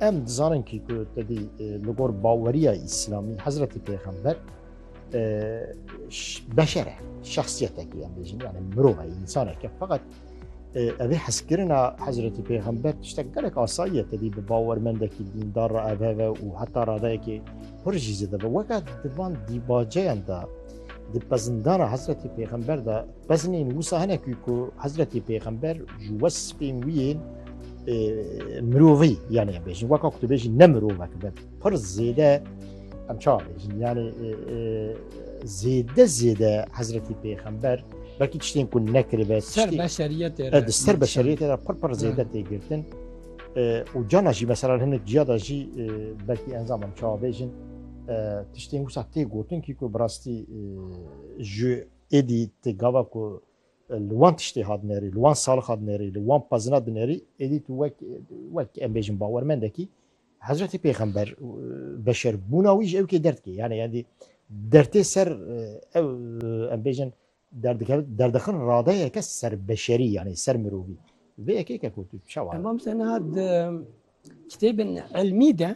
Em dizanin kî ku tedî li gor baweriya îslamî Hezretî Pêxember beşer e şexsiyetekî em bêjin yani mirov e însaneke feqet evê hezkirina Hezretî Pêxember tiştek gelek asayiye tedî bi bawermendekî dîndar ra ev heve û heta radeyekê hir jî zêde ve weke di van dîbaceyan de di pezindana Hezretî Pêxember de Beznên wisa hene ku ku Hezretî Pêxember ji wespên wî yên mirovî yanê em bêjin weka ku tu bêjî ne mirovek be pir zêde em ça bêjin yanê zêde zêde Hezretî Pêxember belkî tiştên ku nekiribe ser beşeriyetê di ser beşeriyetê re pir pir zêde têgirtin û cana jî mesela hinek ciya da jî belkî enzam em ça bêjin tiştên wisa tê gotin kî ku bi rastî ji Êdî ti gava ku li wan tiştê hat nêrî, li wan salixa dinêrî, li wan pezina dinêrî, êdî tu wek wek em bêjin bawermendekî Hezretê Pêxember beşer bûna wî ji ew kê derdikê. Yani yendî dertê ser ew em bêjin derdixin radeyeke ser beşerî yani ser mirovî. Vê yekêke ku tu çawa. Emam Senad kitêbin elmî de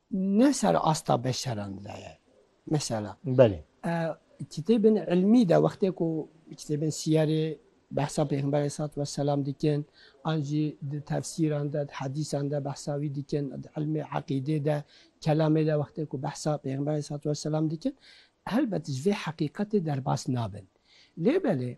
Ne ser asta beşeran de ye. Mesela Belê. kitêbên ilmî de wextê ku kitêbên siyerê behsa Pêxember aleyhissalatu vesselam dikin an jî di tefsîran de, di hedîsan de behsa wî dikin, di ilmê eqîdê de, kelamê de wextê ku behsa Pêxember aleyhissalatu vesselam dikin helbet ji vê heqîqetê derbas nabin. Lê belê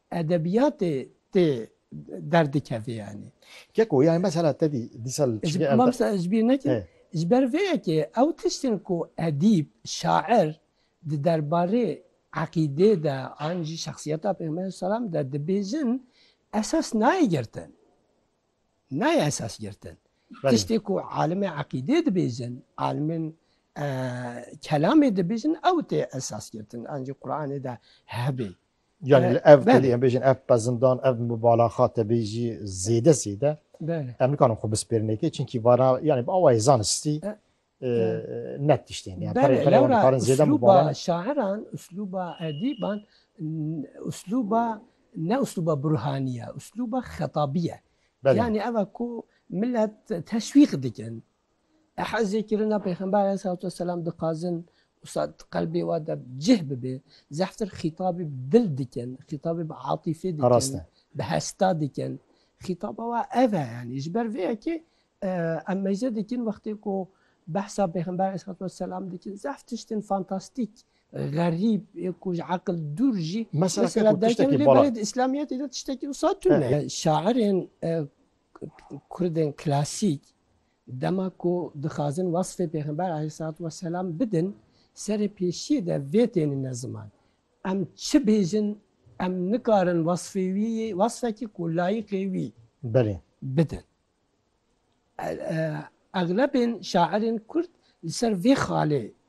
Edebiyatê tê derdikeve yanî. Keko yanî mesela te dî dîsa li çi ge erde. Ez bîr nekim. Ji ber vê yekê ew tiştên ku edîb, şair di derbarê eqîdê de an jî şexsiyeta Pêxemberê selam de dibêjin esas nayê girtin. Nayê esas girtin. Tiştê ku alimê eqîdê dibêjin, alimên kelamê dibêjin ew tê esas girtin. An jî Quranê de hebê. Yani li ev kulî em bêjin ev pezindan ev mubalaxa te bê jî zêde zêde em nikarin xwe bispêrinekê çinkî vana yani bi awayê zanistî net tiştên yani zêde mubala şairan usluba edîban usluba ne usluba burhaniye usluba xetabî ye yani ev ku millet teşwîq dikin Ehezê kirina Pêxember aleyhissalatu vesselam dixwazin wisa di qelbê wan de bi cih bibe, zehftir xîtabê bi dil dikin, xîtabê bi atîfê dikin, bi hesta dikin. Xîtaba wan ev e yanî. Ji ber vê yekê em mêze dikin wextê ku behsa Pêxember aleyhissalatu vesselam dikin zehf tiştên fantastîk, xerîb ê ku ji eqil dûr jî mesela derkevin lê belê di îslamiyetê de tiştekî wisa tune. Şairên Kurdên klasîk dema ku dixwazin wesfê Pêxember aleyhisselatü vesselam bidin, serê pêşiyê de vê tênine ziman. Em çi bêjin em nikarin wesfê wî yê wesfekî ku layîqê wî Belê. bidin. Eglebên şairên kurd li ser vê xalê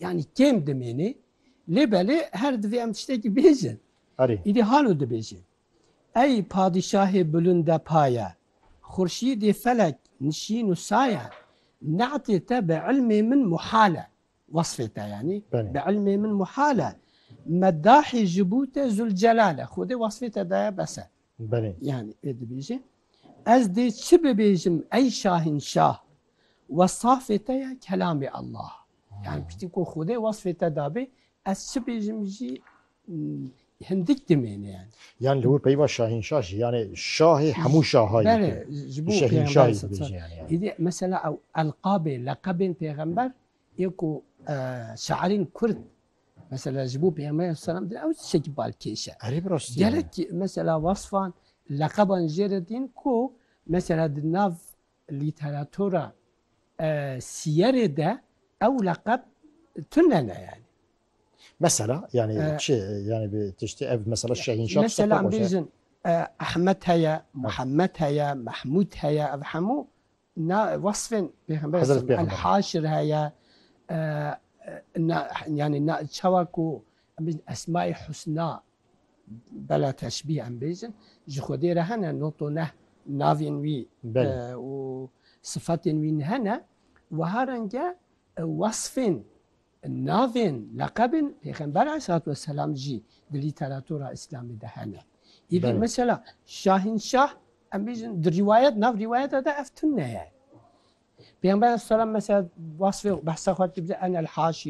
Yanî kêm dimêne lê belê her divê em tiştekî bêjin. Erê. Îdî hano dibêje. Ey padîşahê bilûnde paye, xurşîdê felek nişîn û saye, ne'tê te bi ilmê min muhal e, wesfê te yanî, bi ilmê min muhal e, meddahê ji bo te Zûlcelal e, Xwedê wesfê te daye bes e. Belê. Yanî wê dibêje. Ez dê çi bibêjim ey şahînşah, wesafê te ye kelamê Allah. Yani piştî ku Xwedê wasfê te dabê ez çi bêjim jî hindik dimêne yani. Yan li wir peyva şahînşah jî yani şahê hemû şaha Bele ji bo şahînşahî dibêje yani. Hêdî mesela ew elqabê leqebên pêxember ê ku şairên Kurd mesela ji bo pêxember selam din ew tişekî bal kêş e. Erê bi rastî. Gerek mesela wasfan leqeban jê re dîn ku mesela di nav lîteratura Siyerê de ew leqeb tune ne yani. Mesela yani ee, çi yani bir tişti ev mesela Şahin Şah mesela bizim e, Ahmet heye, Muhammed heye, Mahmud heye ev hemû na vasfên peygamber el haşir heye e, e, yani na çawa ku esma-i husna Bela teşbîh em bêjin ji Xwedê re hene not û neh navên wî û sifetên wî hene. Wiha renge wesfên navên leqebên Pêxember aleyhisselatu wesselam jî di lîteratura îslamî de hene. Îdî mesela Şahînşah em bêjin di rîwayet nav rîwayeta de ev tune ye. Pêxember aleyhisselatu wesselam mesela wasfê behsa xwe dike enel haşî